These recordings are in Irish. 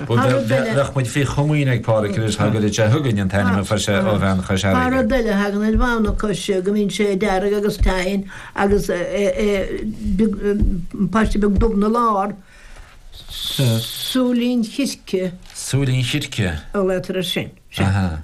Bheadh muid faoi chomaoin ag Páraic anois dá gcuirfeadh sé chugainn an t-ainm a fuair sé ó bhean Chois Fharraige. Tá rud eile a thagann ar bhonn na coise go mbíonn sé dearg agus teann agus paiste beag dubh ina lár. Súilín chirce. Súilín chirce. An leigheas air sin. Sea.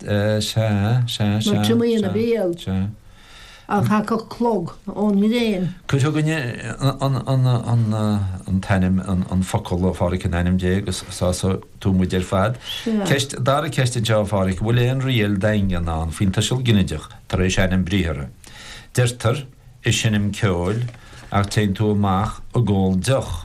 Sea, sea, sea, Nó triomaigh ina sea, bhéal. sea. An chacfadh clog ón ngréin? Cuir chugainn an t-ainm, an focal, a Pháraic, in ainm Dé, agus sásóidh tú muid ar fad. Sea. Ceist, dara ceist anseo, a Pháraic, an bhfuil aon riail dhaingean ann faoin tuiseal ginideach tar éis ainm briathartha? Deirtear, ag seinm ceoil, ach téann tú amach ag ól deoch.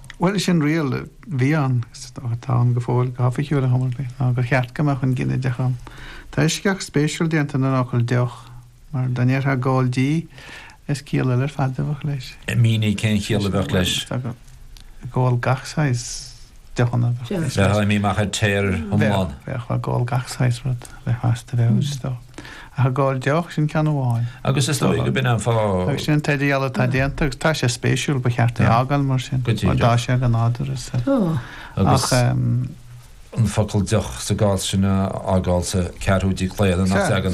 Bhuel, sin riail a bhí ann, atá ann go fóill, go hoifigiúil, ar chuma ar bith, ná gur cheart go mbeadh an ginideach ann. Tá eisceacht spéisiúil déanta den fhocal 'deoch', mar dá ndéarfá 'ag ól dí', is ciall eile ar fad a bheadh leis. Mínigh cén chiall a bheadh leis. Tá ag ól, ag ól gach saghas deochanna a bheadh leis. Bheadh imithe amach ar tear iomlán. Bheadh, bheadh, bheadh ag ól gach saghas rud a bheith fast a bheadh leis, is dócha. Ach ag ól deoch, sin ceann amháin. Agus is dóigh go b'in an fáth. Agus sin an t-idirdhealú atá déanta, agus tá sé spéisiúil, ba cheart é a fhágáil mar sin. Go díreach. Mar tá sé an-nádúrtha. Agus an focal deoch sa gcás sin a fhágáil sa 4ú díochlaonadh nach dteagann aon.